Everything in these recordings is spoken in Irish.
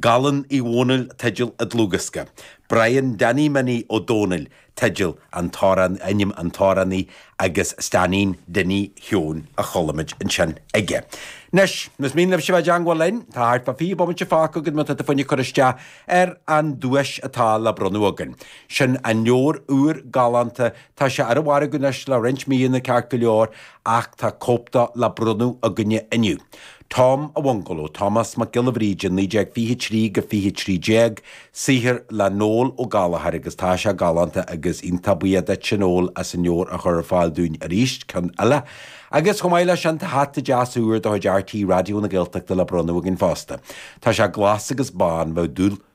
Gallen Uí Dhónaill teideal an dlúthdhiosca, Brian Danny Minnie Ó Dónaill teideal an t-amhrán, ainm an t-amhránaí, agus Steainín Dinny Sheoin a chuala muid ansin aige. Anois, más mian libhse bheith i dteangmháil linn, tá thart fá 20 bomaite fágtha againn má tá tú fá choinne cur isteach ar an duais atá le bronnadh againn. Sin an leabhar úr galánta, tá sé ar an mhargadh anois le roinnt míonna ceart go leor, ach tá cóip de le bronnadh againne inniu. Tom a Bhungalow, Tomás Mac Giolla Bhríde 1923-2013, saothar le Noel Ó Gallchóir agus tá sé galánta agus iontach buíoch duitse Noel as an leabhar a chur ar fáil dúinn arís, ceann eile. Agus chomh maith leis sin tá hata deas úr de chuid RTÉ Raidió na Gaeltachta le bronnadh againn fosta. Tá sé glas agus bán, bheadh dúil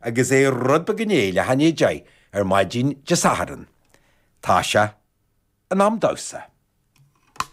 Agus é rud ba gné le hÁine Jay ar maidin Dé Sathairn. Tá sé in am domhsa.